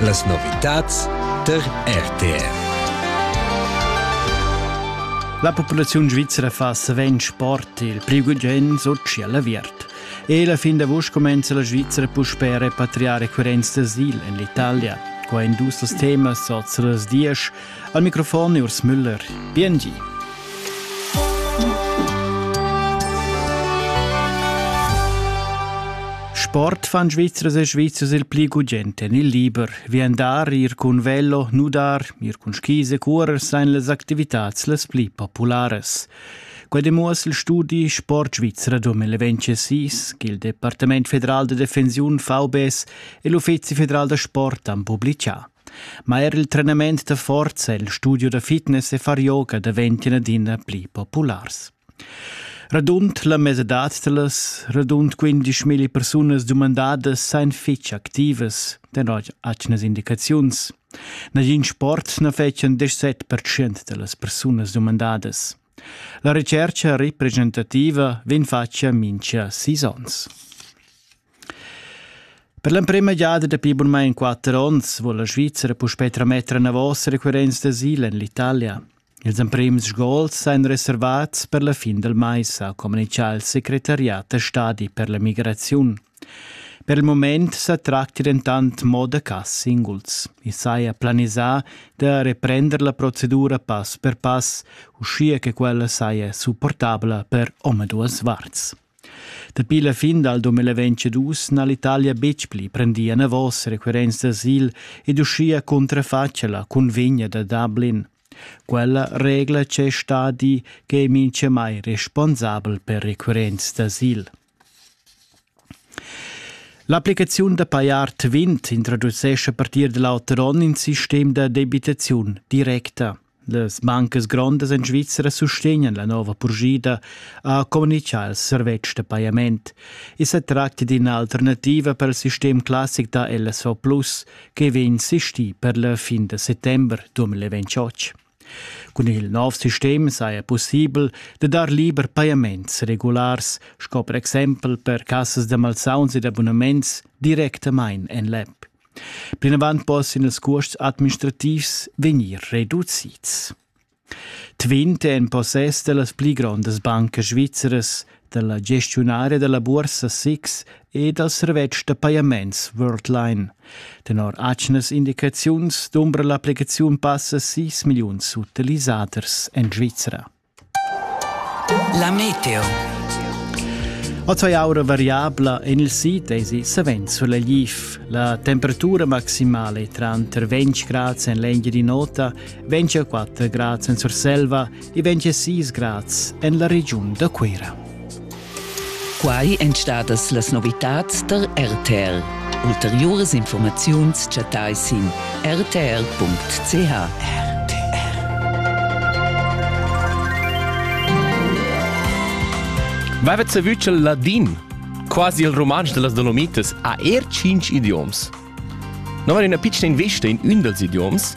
Las novitads tar RTR. La populaziun svizra fa savens sport, il pli gugent Sochi all'aviert. E la fin d'avust comenza la Svizzera puspè a repatriare coerenz d'asil en l'Italia. Qua en dus temas oz las dies Al microfon è Urs Müller. Biengi. Sport fan Svizzers e Svizzers il pli gugent en il liber. Vi andar, ir cun velo, nudar, ir cun skis e curer sein las activitads las pli populares. Quai demuoss il studi Sport Svizzera 2026 che il Departament federal de Defensiun VBS e l'Uffizi federal da sport han publicà. Ma er il trenament da forza e il studio da fitness e far yoga daventan adina pli populars. Radund la mesadad da las radund 15.000 persunas dumandadas san fitg activas tenor atgnas indicaziuns. Nagin sport na fetschan 17% da las persunas dumandadas. La recerca representativa vegn fatga mincha sis onns. Per l'emprema giada dapi bunmain quatter onns vul la Svizra puspè trametter enavos requirents d'asil en l'Italia. Ils emprims sgols èn reservats per la fin del mais, ha communitgà il secretariat da stadi per la migraziun. Per il moment sa tracti dentant mo da cas singuls. I saja planisà da reprender la procedura pass per pass, uschia che quella saja supportabla per omaduas varts. Dapi la fin dal 2022 n'ha l'Italia betg pli prendì enavos requirents d'asil ed uschia cuntrafatg la cunvegna da Dublin. Quella regla c'è stadi che è mintgamai responsabel per requirents d'asil. L'applicaziun da pajar Twint introducesce a partir da l'auter onn in sistem da debitaziun directa. Las bancas grondas en Svizra sustegnan la nova purschida, ha communitgà il servetsch da pajament. I sa tracta d'ina alternativa per il sistem classic da LSV Plus che vegn sistì per la fin da settembre 2028. Cun il nov sistem saja pussibel da dar liber pajaments regulars, sco per exempel per cassas da malsauns ed abunaments, directamain en l'app. Plinavant possan ils cuosts administrativs vegnir reducids. Tvint è in possess da las pli grondas bancas svizzeras, dalla gestiunaria della bursa SIX e dal servetsch da pajaments Worldline. Tenor atgnas indicaziuns dumbra l'applicaziun passa 6 milliuns utilisaders en Svizra. La meteo. Oz aura variabla en il sid esi savens sulegl. La temperatura maximale tranter 20 grad en l'Engiadin'Ota, 24 grad en Surselva e 26 grad en la regiun da Cuira. Quai èn stadas las novitads tar RTL. Ulteriuras informaziuns chattai sin rtl.ch. Mai savü ch'il ladin, quasi il rumantsch da las Dolomitas, ha er tschinch idioms. No var üna pitschna investa in ün dals idioms,